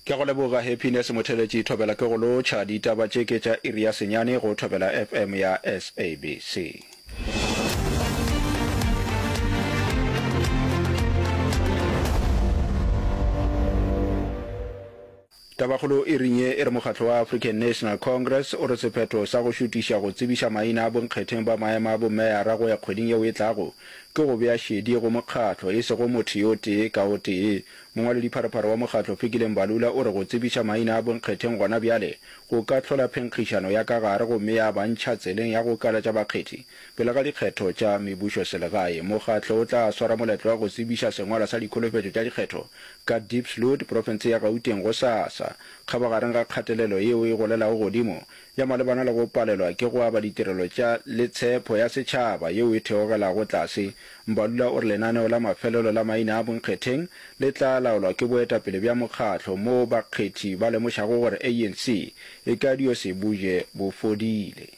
Ke a go leboga Happiness Motheletši Thobela ke go lotšha, ditaba tše ke tša iri ya senyane go Thobela FM ya SABC. Tabakgolo e ring ye e re mokgatlo wa African National Congress o re sephetho sa go šutiša go tsebiša maina a bonkgetheng ba maema a bomeyara go ya kgweding yeo e tlago ke go bea šedi go mokgatlo e sego motho yo tee ka o tee. Mongwaledipharephare wa mokgatlo Fikile Mbalula o re go tsebiša maina a bonkgetheng gona bjale go ka hlola phenkgišano ya ka gare gomme ya ba ntšha tseleng ya go kalatša bakgethi. Pele ga dikgetho tša mebušoselegae, mokgatlo o tla swara moletlo wa go tsebiša sengwalwa sa dikholofetšo tša dikgetho ka Diepsloot, profense ya Gauteng gosasa, kgabagareng ga kgatelelo yeo e golelago godimo ya malebana le go palelwa ke go aba ditirelo tša le tshepho ya setšhaba yeo e theogelago tlase. Mbalula o re lenaneo la mafelelo la maina a bonkgetheng le tla laolwa ke boetapele bja mokgatlo moo bakgethi ba lemošago gore ANC e ka dio se buje bo fodile.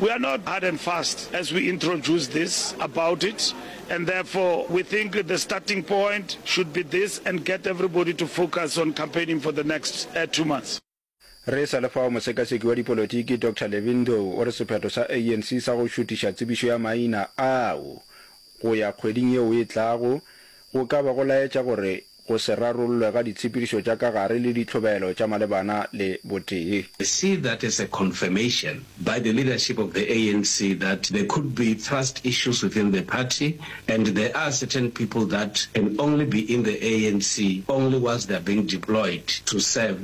We are not hard and fast as we introduce this about it and therefore we think the starting point should be this and get everybody to focus on campaigning for the next two months. Re sa le fao, mosekaseki wa dipolotiki Doctor Levin Ndou o re sephetho sa ANC sa go šutiša tsebišo ya maina ao go ya kgweding yeo e tlago go ka ba go laetša gore go se rarollwe ga ditshepedišo tša ka gare le ditlhobelo tša malebana le botee. I see that as a confirmation by the leadership of the ANC that there could be trust issues within the party and there are certain people that can only be in the ANC only once they are being deployed to serve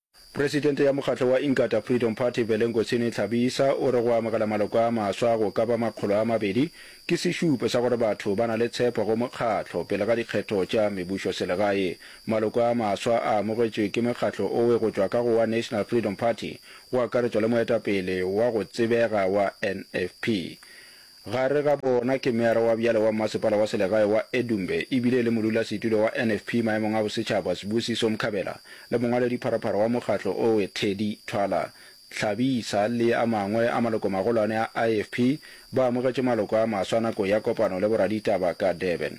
Presidente ya mokgatlo wa Inkatha Freedom Party Velengosini Tlhabisa o re go amogela maloko a maswa go ka ba makgolo a mabedi ke sešupo sa gore batho ba na le tshepo go mokgatlo pele ga dikgetho tša mebušoselegae. Maloko a maswa a amogetšwe ke mekgatlo owe go tšwa ka go wa National Freedom Party go akaretšwa le moetapele wa go tsebega wa NFP, Gare ga bona ke Meyara wa bjale wa Mmasepala wa Selegae wa Edumbe e bile e le Modulasetulo wa NFP maemong a Bosetšhaba Sibusiso Mkhabela le Mongwaledipharapara wa mokgatlo owe Teddy Thwala Hlabisa le a mangwe a malokomagolwane a IFP ba amogetše maloko a maswa nako ya kopano le boraditaba ka Durban.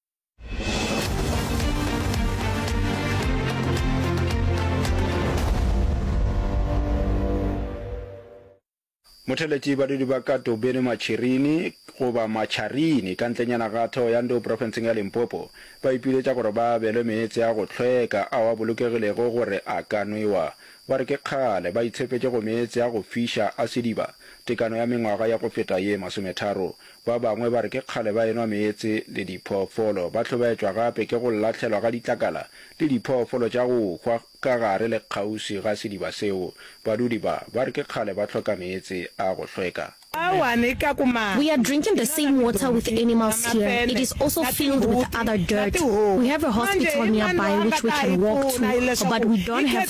motheletši badudi ba ka tobeni matšhirini goba matšharini ka ntlenyana ga theo ya ndo profenseng ya limpopo ba ipiletša gore ba abelwe meetse a go hlweka ao a bolokegilego gore a ka nwewa ba re ke kgale ba itshepetše go meetse a go fiša a sediba tekano ya mengwaga ya go feta ye masometharo Ba bangwe ba re ke kgale ba enwa meetse le diphoofolo. Ba hlobaetšwa gape ke go lahlelwa ga ditlakala le diphoofolo tša go hwa ka gare le kgauswi ga sediba seo. Badudi ba, ba re ke kgale ba hloka meetse a go hlweka. We are drinking the same water with animals here, it is also filled with other dirt. We have a hospital nearby which we can walk to, but we don't have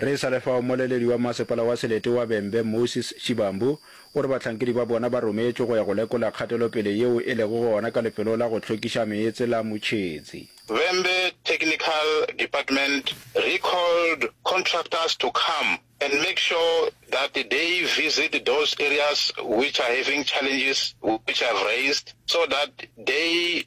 Re e sa le fao, mmoleledi wa Mmasepala wa Selete wa Bembe, Moses Shivambu, o re bahlankedi ba bona ba rometšwe go ya go lekola kgatelopele yeo e lego gona ka lefelo la go hlwekiša meetse la Mutšhetsi. Bembe Technical Department recalled contractors to come and make sure that they visit those areas which are having challenges which I've raised so that they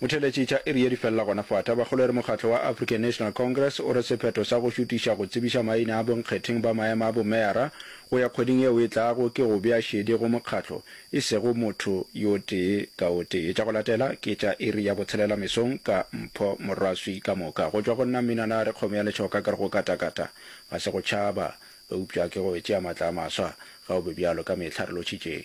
Motheeletši tša iri ye di felela gona fa. Tabakgolo e re mokgatlo wa African National Congress o re sephetho sa go šutiša go tsebiša maina a bonkgetheng ba maema a bomeyara go ya kgweding yeo e tlago ke go bea šedi go mokgatlo e sego motho yo tee ka o tee. Tša go latela ke tša iri ya botshelela mesong ka Mpho Moraswi ka moka go tšwa go nna Mminana a re kgomo ya letšhoka ke re go katakata ga se go tšhaba eupša ke go e tšea matla a maswa ga o be bjalo ka mehla re lotšhitšeng.